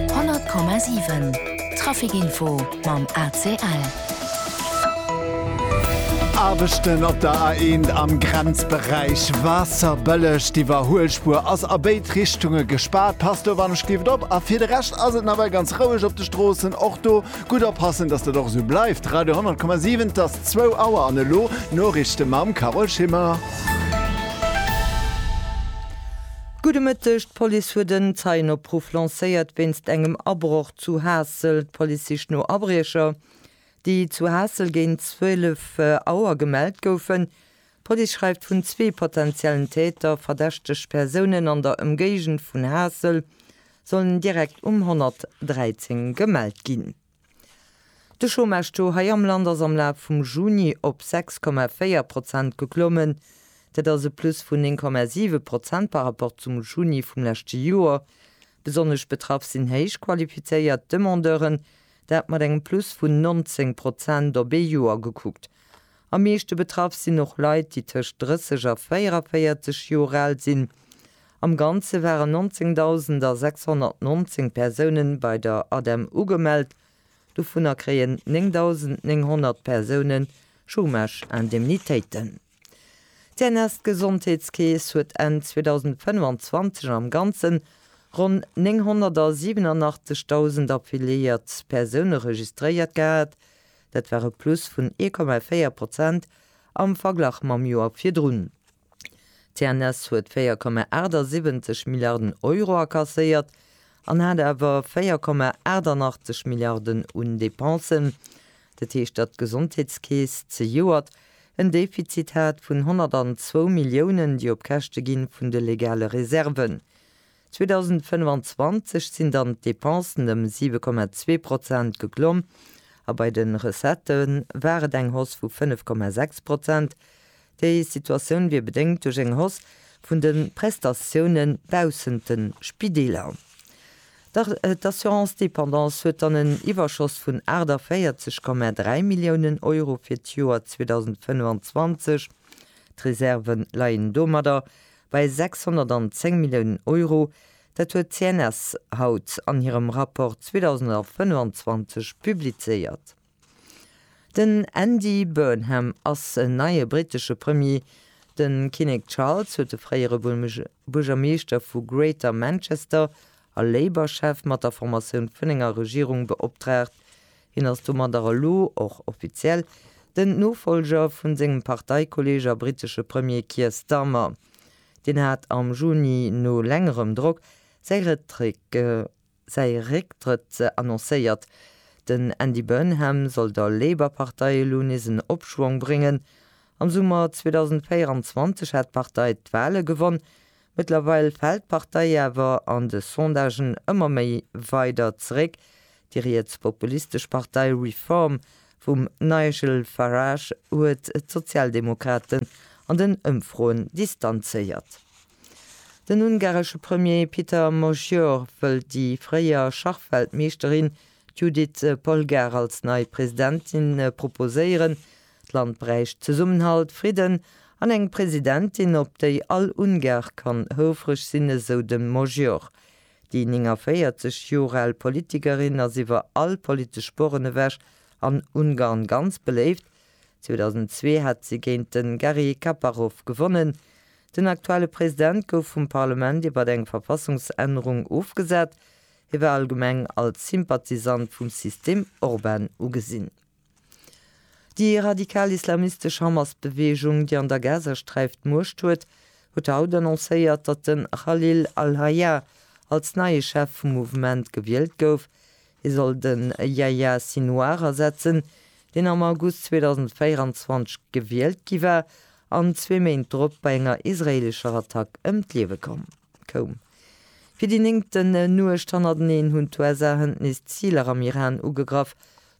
100,7 Trafic-Info mam ACL. Aarbechten op der A1 am Grenzberäich Waasserbëlleg. D'Iwwerhuelspuer ass a béid Richtunge gespaart. Passt dowannech gift op a fir de Rescht ass et nawell ganz roueg op de Stroossen. Och do gutt oppassen, dass dat och esou bleift. Radio 100,7 't ass zwou Auer an elo d'Noriichte mam Carole Schimmer. Gudde Mëtteg, D'Police huet en Zeienopruff lancéiert wéinst engem Abroch zu Haassel. D'Police sicht no Abriecher, déi zu Haassel géint 12 Auer gemellt goufen. D'Police schreift vun zwee potenziellen Täter. Verdächteg Persounen an der Ëmgéigend vun Haassel sollen direkt um 113 gemellt ginn. De Chômage-Taux hei am Land ass am Laf vum Juni op 6,4 Prozent geklommen. Dat ass e Plus vun 9,7 Prozent par rapport zum Juni vum leschte Joer. Besonnesch betraff sinn héich qualifizéiert Demandeuren, dat mat engem Plus vun 19 Prozent op ee Joer gekuckt. Am meeschte betraff sinn och Leit, déi tëscht 30 a 44 Joer al sinn. Am Ganze waren 19.619 Persoune bei der ADEM ugemellt, dovunner kréien 9.900 Persoune Chômage-Indemnitéiten. D'CNS-Gesondheetskeess huet Enn 2025 am Ganzen ronn 987.000 affiliéiert Persoune registréiert gehat, Dat war e Plus vun 1,4 Prozent am Verglach mam Joer virdrun. D'CNS huet 4,78 Milliarden Euro akasséiert an hat awer 4,88 Milliarden un Depensen. Dat heescht, datt d'Gesondheetskeess zejoert en Defizit hat vun 102 Milliounen, déi op Käschte gi vun de legale Reserven. 2025 sinn dann d'Depensen ëm 7,2 Prozent geklomm a bei de Recettë war et eng Hausse vu 5,6 Prozent. Déi Situatioun wier bedéngt duerch eng Hausse vun de Prestatiounen baussent de Spideeler. D'Assurance dépendance huet dann en Iwwerschoss vun 48,3 Milliounen Euro fir d'Joer 2025. D'Reserven leien domadder Bei 610 Milliounen Euro, dat huet d'CNS haut an hirem Rapport 2025 publizéiert. Den Andy Burnham ass en neie brittesche Premier. De Kinnek Charles huet de fréiere Buergermeeschter vu Greater Manchester a Labour-Chef mat der Formatioun vun enger Regierung beoptraagt, Hien ass domadder elo och offiziell den Nofollger vu sengem Parteikolleeg a brittesche Premier Keir Starmer. Deen hat am Juni no längerem Drock säi Récktrëtt annoncéiert. Den Andy Burnham soll der Labour-Partei elo nees en Opschwong bréngen. Am Summer 2024 hat d'Partei d'Wale gewonn, Mëttlerweil fält d'Partei awer an de Sondagen ëmmer méi weider zeréck. Déi rietspopulistesch Partei Reform vum Nigel Farage huet d'Sozialdemokraten an den Ëmfroen distanzéiert. Den ungaresche Premier Peter Magyar wëll déi fréier Schachweltmeeschterin Judit Polgár als nei Presidentin proposéieren. D'Land bräicht Zesummenhalt, Fridden an eng Presidentin, op déi all Ungar kann houfreg sinn, esou de Magyar. Déi 49 Joer al Politikerin ass iwwer all politesch Sporren ewech an Ungarn ganz beléift. 2002 hat si géint de Garry Kaparov gewonnen. Den aktuelle President gouf vum Parlement iwwer eng Verfassungsännerung ofgesat. Hie war allgemeng als Sympathisant vum System Orban ugesinn. Déi radikal islamistesch Hamas-Beweegung, déi an der Gazasträif d'Muecht huet, huet haut annoncéiert, datt de Khalil al-Hayya als neie Chef vum Mouvement gewielt gouf. Hie soll de Yahya Sinouar ersetzen, deen am August 2024 gewielt gi war an zwee Méint drop bei enger israeelescher Attack ëm d'Liewe koum. Fir déi néngten Nuecht hannerteneen hunn d'USA-Hënt nees Ziler am Iran ugegraff,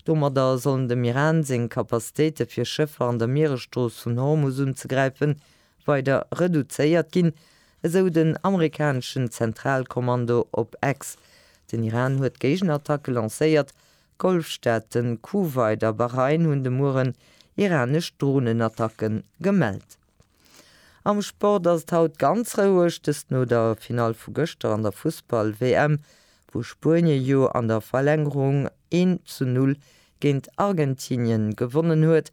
Domadder sollen dem Iran seng Capacitéite fir Schëffer an der Mieresstrooss vun Hormus unzegräifen, weider reduzéiert ginn, esou den amerikaneschen Zentralkommando op X. Den Iran huet Géigenattacke lancéiert, d'Golfstaaten Kuwait a Bahrain hunn de Mueren iranesch Dronenattacken gemellt. Am Sport ass et haut ganz roueg, dëst no der Finall vu gëschter an der Fussball-WM, wou Spuenien jo an der Verlängerung een zu null géint Argentinien gewonnen huet.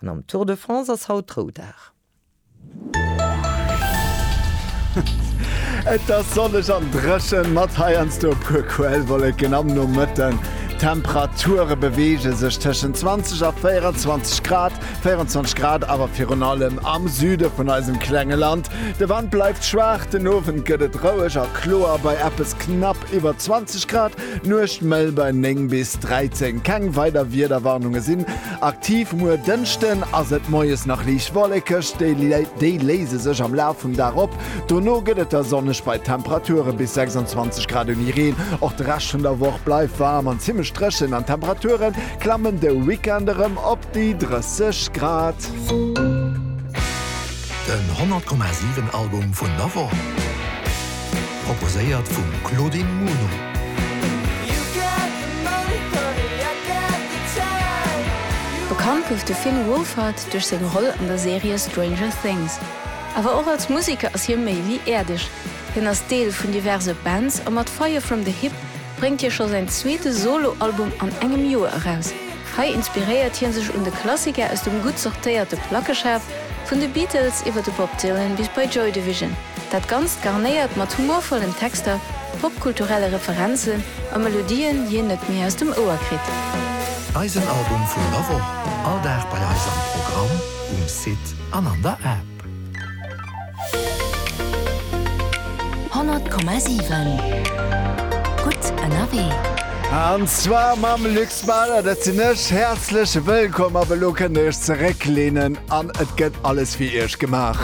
An am Tour de France ass haut Roudag. Et ass sonneg an dréchen, mat heiansdo e puer Quellwolleken am Nomëtten. D'Temperature beweege sech tëschent 20 a 24 Grad. 24 Grad awer virun allem am Süde vun eisem klenge Land. De Wand bleift schwaach, den Owend gëtt et roueg a kloer bei eppes knapp iwwer 20 Grad, d'Nuecht mëll bei 9 bis 13. Keng weider Wiederwarnunge sinn aktiv. Muer Dënschden ass et moies nach liicht wollekeg, déi léise sech am Laf vum Dag op, dono gëtt et da sonneg bei Temperature bis 26 Grad ouni Reen. Och de Rescht vun der Woch bleift waarm an zimmlech dréchen an d'Temperature klammen de Weekend erëm op. Déi 30 Grad. Den 100,7 Album vun der Woch proposéiert vum Claudine Muno. Bekannt gouf de Finn Wolfhard duerch seng Roll an der Serie Stranger Things. Awer och als Museker ass hie méi wéi äerdeg. Hien ass Deel vun diverse Bands a mat Fire From The Hip bréngt hie scho säin zweete Solo-Album an engem Joer eraus. Hei inspiréiert hie sech un de Klassiker aus dem gutt sortéierte Plackeschaf, vun de Beatles iwwer de Bob Dylan bis bei Joy Division. Dat Ganzt garnéiert mat humorvollen Texter, popkulturelle Referenzen a Melodien, déi een net méi aus dem Ouer kritt. Eisen Album vun der Woch, all Dag bei eis am Programm, um Site an an der App. Honnert Komma siwen, gutt ënnerwee! An zwar mam Luc Smeller, dat sinn ech. Häerzlech wëllkomm, ab elo kënnt Dir Iech zeréckleenen an et gëtt alles fir Iech gemaach.